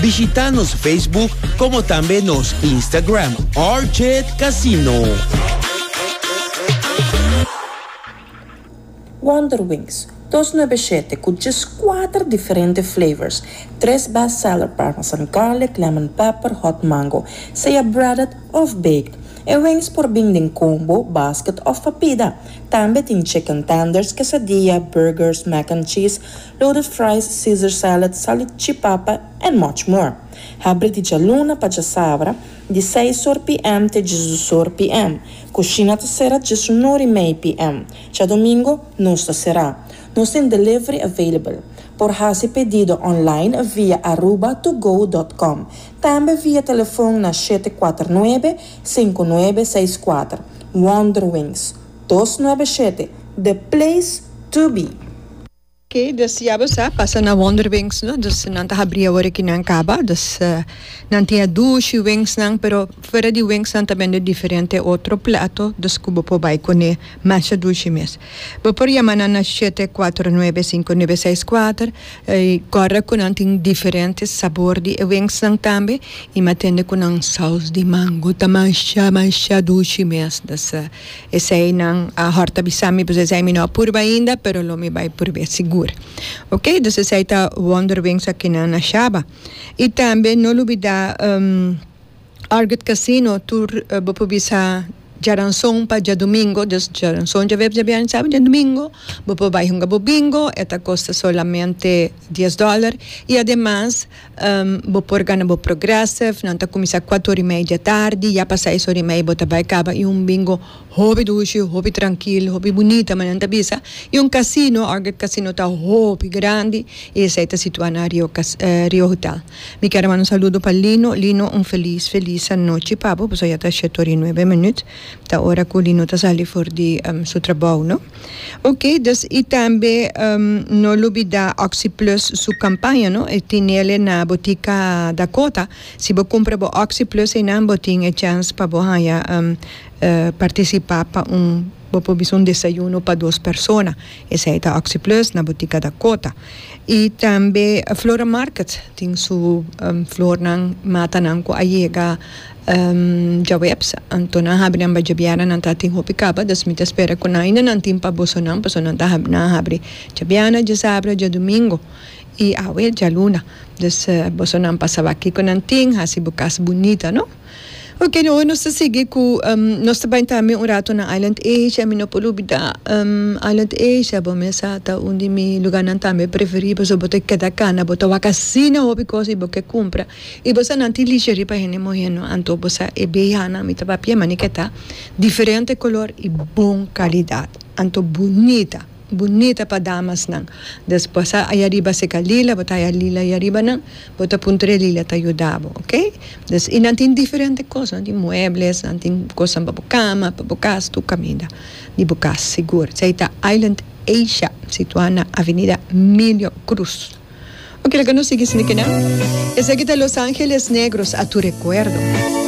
Bishita nos Facebook como tambe nos Instagram RJ Casino. Wonder Wings, dos nuebeshete cu djes cuater diferente flavors, tres best seller parmesan garlic, lemon pepper, hot mango, sea breaded of baked. E wings por bin den combo, basket of pa pida. Tambe tin chicken tenders, quesadilla, burgers, mac and cheese, Loaded fries, Caesar salad, salichi papa and much more. Habri di djaluna pa djasabra, di seis or pm te djisdos or pm. Cushina ta cera djes un or y mei pm. Djadomingo nos ta cera. Nos tin delivery available. Por haci pedido online via aruba2go.com. Tambe via telefon na shete kuater nuebe, sinku nuebe seis kuater. Wonderwings, dos nuebe shete, the place to be! Ke desiaba sa pasa na wonderwings no dus nan ta habri awor aki nan kaba dus nan tin a dushi wings nan pero fuera di wings nan ta bende diferente otro plato dus ku bo por bai kune masha dushi mes bo por yama nan na shete kuater nuebe sinku nuebe seis kuater y kòrda ku nan tin diferente sabor di e wings nan tambe y m'atende ku nan saus di mango ta masha masha dushi mes dus. Eseinan a hòrt a bisa mi, pues esei mi no a purba ainda, pero lo mi bai purb'é sigur. Ok, dus esei ta wonderwings akinan na Shaba. I tambe no lubidá Argid Casino, tur bo por bisa djaranson pa djadumingo, dus djaranson, djaviernes, djabièrnè, sábado, djadumingo, bo por bai hunga bo bingo, e ta kosta solamente dies dòler, i ademas. Bo por gana bo Progressive, nan ta kuminsá kuatu ora i mei dia tardi, ya pa seis ora i mei bo ta bai kaba, i un bingo hopi dushi, hopi trankil, hopi bunita me nan ta bisa, i un kasino, Argate Casino ta hopi grandi i esei ta situá na Rio Rio Hotel. Mi kere manda un saludo pa Lino, Lino un felis felis anochi pa bo, pasobra ya ta shete ora i nuebe minut, ta ora ku Lino ta sali for di su trabou no. Ok dus y tambe no lubida oxi plus su campaña no e tinele na botica Dakota si bo cumpra bo oxi plus eynan bo tin e chance pa bo haya participa pa un bo por bisa un desayuno pa dos persona esey ta oxi plus na botica Dakota y tambe Flora market tin su flornan matanan cu a yega Djaweps, anto nan habri nan bajabiana nan ta tin hopi kaba, dus mi ta spera ku nan ainda nan tin pa boso nan, paso nan ta habri nan habri djabiana, djasabra, djadumingo i awe djaluna, dus boso nan pa saba kiko nan tin, hasi bo kas bunita no. Ok no nos ta sigui ku nos ta bai tambe un rato na Island Asia, mi no por lubida Island Asia bo mesa ta un di mi luganan tambe preferí paso bo ta keda kana bo ta wak hasi nan hopi kos i bo ke kumpra I bo sa nan tin lishi riba hende muhé no anto bo sa e beyanan mi ta papia manike ta diferente kolor i bon kalidat anto bunita bunita pa damas nan des bo sa aya riba seka lila bo ta aya lila aya riba nan bo ta puntra e lila ta yuda bo ok des i nan tin diferente kos nan tin muebles nan tin kosnan pa bo kama pa bo kas tur kaminda di bo kas sigur esei ta Island Asia situa na avenida Milio Cruz. Oke, laga nos sigui sindi kende. Esaki ta Los Angeles Negros, a tu rekuerdo.